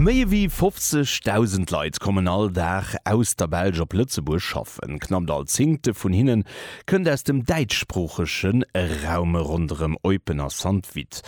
Méi ewéi 50.000 Leit kommen all Dag aus der Belsch op Lëtzebuerg schaffen. Knappt all Zéngte vun hinne kënnt aus dem däitschsproochege Raum ronderëm Eupen a Sankt-Vith.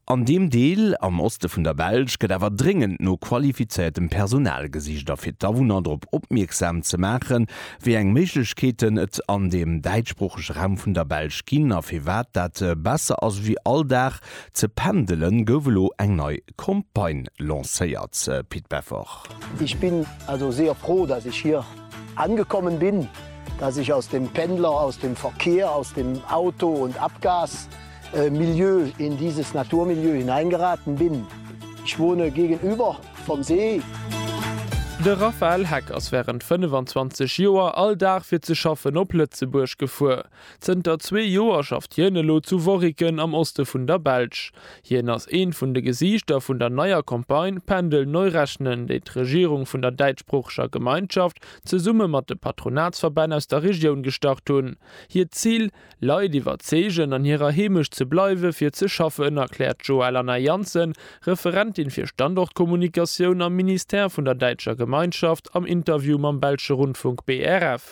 An deem Deel am Oste vun der Belsch gëtt awer dréngend no qualifizéiertem Personal gesicht. A fir d'Awunner drop opmierksam ze maachen, wéi eng Méiglechkeeten et an deem däitschsproochege Raum vun der Belsch ginn a firwat dat besser ass ewéi all Dag Ze pendelen gouf elo eng nei Campagne lancéiert, Pit Beffer. Ich bin also sehr froh, dass ich hier angekommen bin, dass ich aus dem Pendler, aus dem Verkehr, aus dem Auto und Abgas Milieu in dieses Naturmilieu hineingeraten bin. Ich wohne gegenüber vom See. De Raphaël Heck ass wärend 25 Joer all Dag fir ze schaffen op Lëtzebuerg gefuer. Zënter zwee Joer schafft hien elo zu Worriken am Oste vun der Belsch. Hien ass eent vun de Gesiichter vun der neier Campagne Pendel neu rechnen, déi d'Regierung vun der däitschsproocheger Gemeinschaft zesumme mat de Patronatsverbänn aus der Regioun gestart hunn. Hiert Zil, Leit iwwerzeegen, an hirer Heemecht ze bleiwe fir ze schaffen, erkläert d'Joëlanna Janssen, Referentin fir Standortkommunikatioun am Ministère vun der däitscher Gemeinschaft, am Interview mam belsche Rundfunk BRF.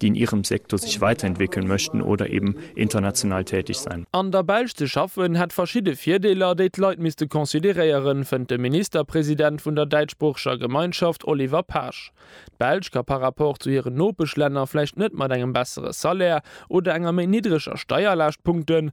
déi in ihrem Sektor sich weiterentwickeln möchten oder eben international tätig sein. An der Belsch ze schaffen hätt verschidde Virdeeler, déi d'Leit misste consideréieren, fënnt de Ministerpresident vun der däitschsproocheger Gemeinschaft Oliver Paasch. D'Belsch ka par rapport zu hiren Nopeschlänner vläicht net mat engem bessere Salaire oder enger méi niddreger Steierlaascht punkten,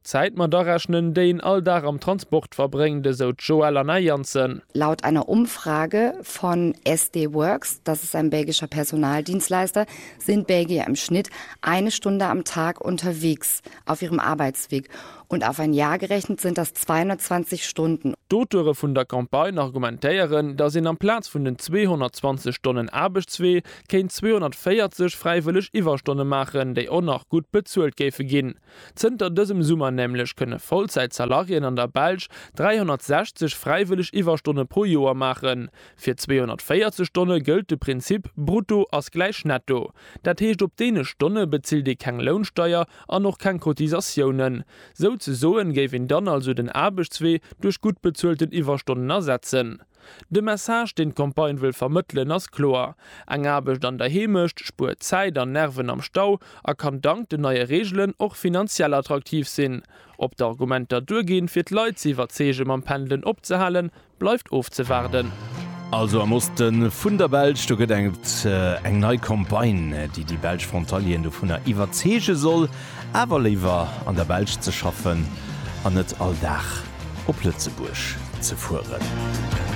Zäit mat arechnen, déi een all Dag am Transport verbréngt, esou d'Joëlle an Är Janssen. Laut einer Umfrage von SD Worx, das ist ein belgischer Personaldienstleister, sind Belgier im Schnitt eine Stunde am Tag unterwegs auf ihrem Arbeitsweg und auf ein Jahr gerechnet sind das 220 Stunden. D'Auteure vun der Campagne argumentéieren, datt een amplaz vun den 220 Stonnen Aarbechtswee kéint 240 fräiwëlleg Iwwerstonne maachen, déi och nach gutt bezuelt géife ginn. Zënter dësem Summer nämlech kënne Vollzäit-Salariéen an der Belsch 360 fräiwëlleg Iwwerstonne pro Joer maachen. Fir 240 Stonne gëllt de Prinzip Brutto ass gläich Netto. Dat heescht op deene Stonne bezilt ee keng Lounsteier an och keng Cotisatiounen. Souzesoen géif een dann also den Aarbechtswee duerch gutt bezuelten Iwwerstonnen ersetzen. De Message, deen d'Campagne wëll vermëttelen, ass kloer, Eng Aarbecht an der Heemecht spuert Zäit an Nerven am Stau a kann dank den neie Reegelen och finanziell attraktiv sinn. Ob d'Argumenter duerginn, fir d'Leit ze iwwerzeege mam Pendelen opzehalen, bleift ofzewaarden. Also am Oste vun der Belsch, do gëtt et eng nei Campagne, déi déi belsch Frontalieren dovunner iwwerzeege soll, Awer léiwer an der Belsch ze schaffen an net all Dag op Lëtzebuerg ze fueren.